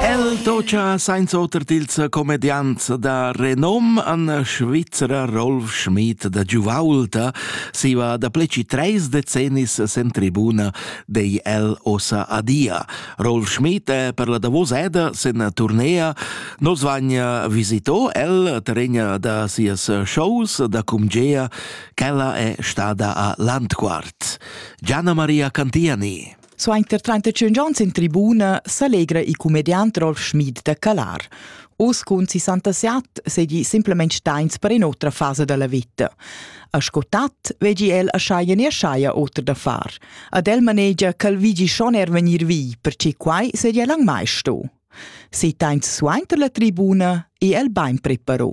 El tocha sainza oter tils comediants da renom an Svizzera Rolf Schmid da Giuvaulta siva da pleci treis decennis sen tribuna dei el ossa adia. Rolf Schmid è per la davos eda sen turnea. Nos vagna visito el terregna da sias shows da cumgea, ch'ella è stada a Landquart. Gianna Maria Cantiani. Suenter 35 onns in tribuna s'allegra il comediant Rolf Schmid da calar. Uss cun 67 seigi simplement steins per in'otra fasa dalla vita. A scotat vegi el a schaia ne schaia oter da far. Ad el manegia ch'el vigi schon er vegnir vi, perche quai sedia lang mai sto. Se teins suenter la tribuna e el bein preparo.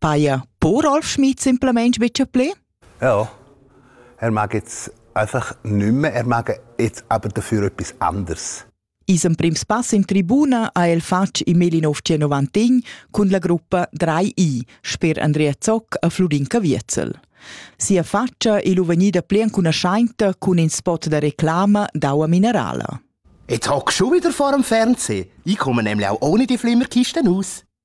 Paja po Rolf Schmid simplamain betg pli? Ja, er mag jetzt einfach nicht mehr, er mag jetzt aber dafür etwas anderes. Isem prims pass in tribuna ha el fatg in 1991 cun la gruppa 3i sper Andrea Zoc e Florin Caviezel. Sia faccia è vegnida pli enconuscenta cun in spot da reclama d'aua minerala. Jetzt hockst du wieder vor dem Fernsehen. Ich komme nämlich auch ohne die Flimmerkisten aus.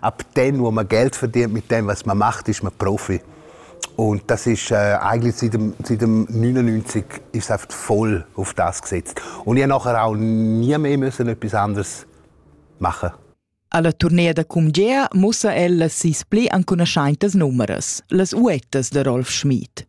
Ab dann, wo man Geld verdient, mit dem, was man macht, ist man Profi. Und das ist äh, eigentlich seit dem, seit dem 99 ist es voll auf das gesetzt. Und ich nachher auch nie mehr müssen etwas anderes machen. Alla turnea da cumgea mussa ella sis pli ancunaschaintas numeras, las uettas da Rolf Schmid.